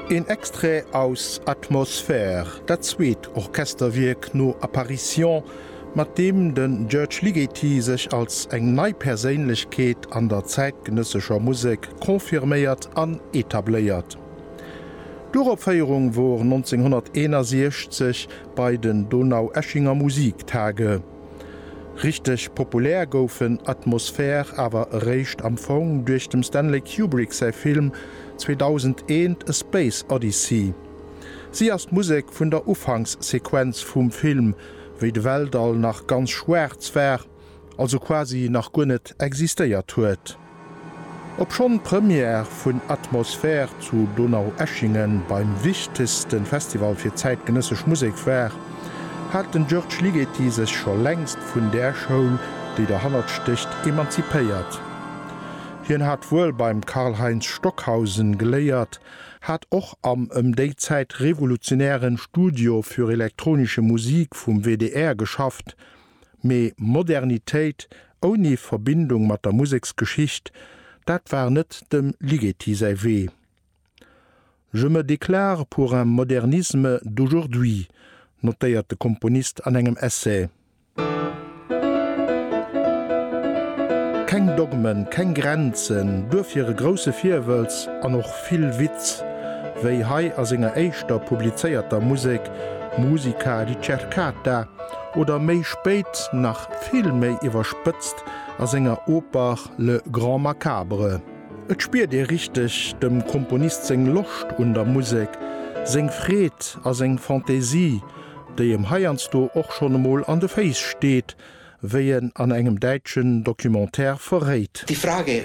Een Extrait aus Atmosphère, dat zweet Orchesterwierk no Apparition, mat deem de György Ligeti sech als eng nei Perséinlechkeet an der zäitgenëssescher Musek confirméiert an etabléiert. D'Uropféierung wor 1961 bei den Donaueschinger Musiktage. Richteg populär gouf en Atmosphär awer eréischt am Fong duerch dem Stanley Kubrick säi Film 2001, A Space Odyssey. Si ass d'Musek vun der Ufankssequenz vum Film, wéi de Weltall nach ganz schwaarz war, also quasi nach guer net existéiert huet. Obschonn d'Première vun Atmosphär zu Donaueschingen beim wichtegste Festival fir zäitgenëssesch Musek war, hat den György Ligeti sech scho längst vun där Schoul, déi derhannert stécht, emanzipéiert. Hien hat wuel beim Karlheinz Stockhausen geléiert, hat och am ëm déi Zäit revolutionären Studio für elektronische Musik vum WDR geschafft, Mee Modernitéit ouni Verbindung mat der Museksgeschicht, dat war net dem Ligeti säi Wee. Je me déclare pour un modernisme d'aujourd'hui, notéiert de Komponist an engem Essai. Keng Dogmen, keng Grenzen, duerfir e grousse Virwëlz an och vill Witz, wéi hei a senger éischter publizéierter Musek Musica ricercata, oder méi spéit nach vill méi iwwerspëtzt a senger Oper Le Grand Macabre. Et spiert ee richteg dem Komponist seng Loscht un der Musek, seng Freed a seng Fantaisie, déi em heiansdo och schonn emol an de Féiss steet, wéi en an engem däitschen Documentaire verréit. Die Frage,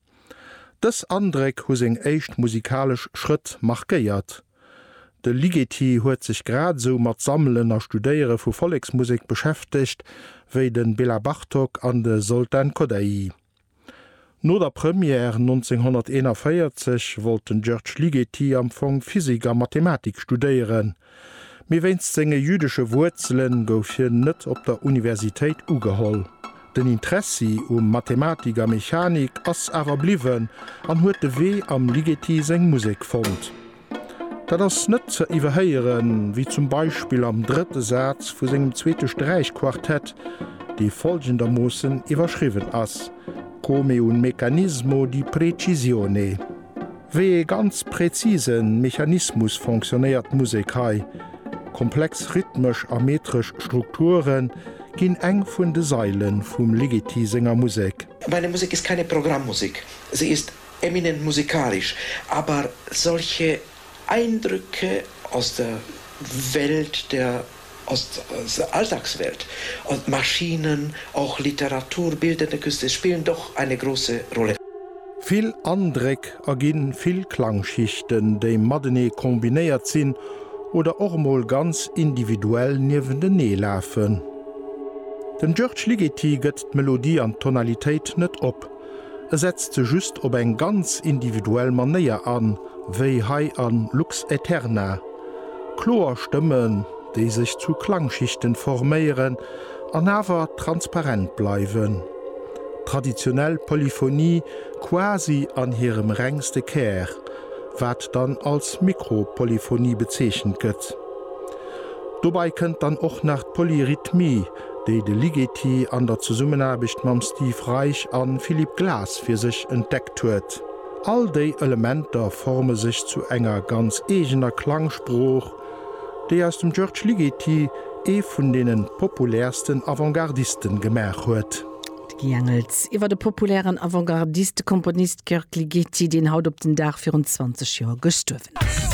Dës Andréck hu seng éischt musikalesch Schrëtt markéiert. De Ligeti huet sech grad esou mat Sammelen a Studéiere vu Volleksmusek beschäftegt wéi de Bela Bartok an de Zoltán Kodály. No der Première 1941 wollt den György Ligeti am Fong Physik a Mathematik studéieren. Mee wéinst senge jüdesche Wuerzele gouf hien net op der Universitéit ugeholl. Den Interessi um Mathematik a Mechanik ass awer bliwwen an huet de Wee am Ligeti seng Musek fonnt. Dat ass net ze iwwerhéieren, wéi zum Beispill am drëtte Saz vu sengem zweete Sträichquartett, dee follgendermoossen iwwerschriwwen ass, Come un meccanismo di precisione. Wéi ee ganz präzise Mechanismus fonctionnéiert d'Musek hei? Komplex rhythmesch a metresch Strukture ginn eng vun de Saile vum Ligeti senger Musek. Meine Musik ist keine Programmmusik, sie ist eminent musikalisch, aber solche Eindrücke aus der Welt der. Aus der Alltagswelt, Maschinen, och Literatur, bildende Künste spielen doch eine große Rolle. Vill Andréck erginn vill Klangschichten, déi matenee kombinéiert sinn oder och emol ganz individuell niewentenee lafen. Den György Ligeti gëtt d'Melodie an d'Tonalitéit net op. e setzt se just op eng ganz individuell Manéier an, wéi hei a Lux Aeterna. Kloer Stëmmen, déi sech zu Klangschichten forméieren an awer transparent bleiwen. Traditionell Polyphonie quasi an hirem rengste Kär, wat dann als Mikropolyphonie bezeechent gëtt. Dobei kënnt dann och nach d'Polyrhythmie, déi de Ligeti an der Zesummenaarbecht mam Steve Reich a Philippe Glass fir sech entdeckt huet. All déi Elementer forme sech zu enger ganz eegener Klangsprooch, déi aus dem György Ligeti ee vun deene populäersten Avantgardisten gemaach huet. D'Guy Engels iwwer de populären Avantgardiste-Komponist György Ligeti, deen haut op den Dag virun 20 Joer gestuerwen ass.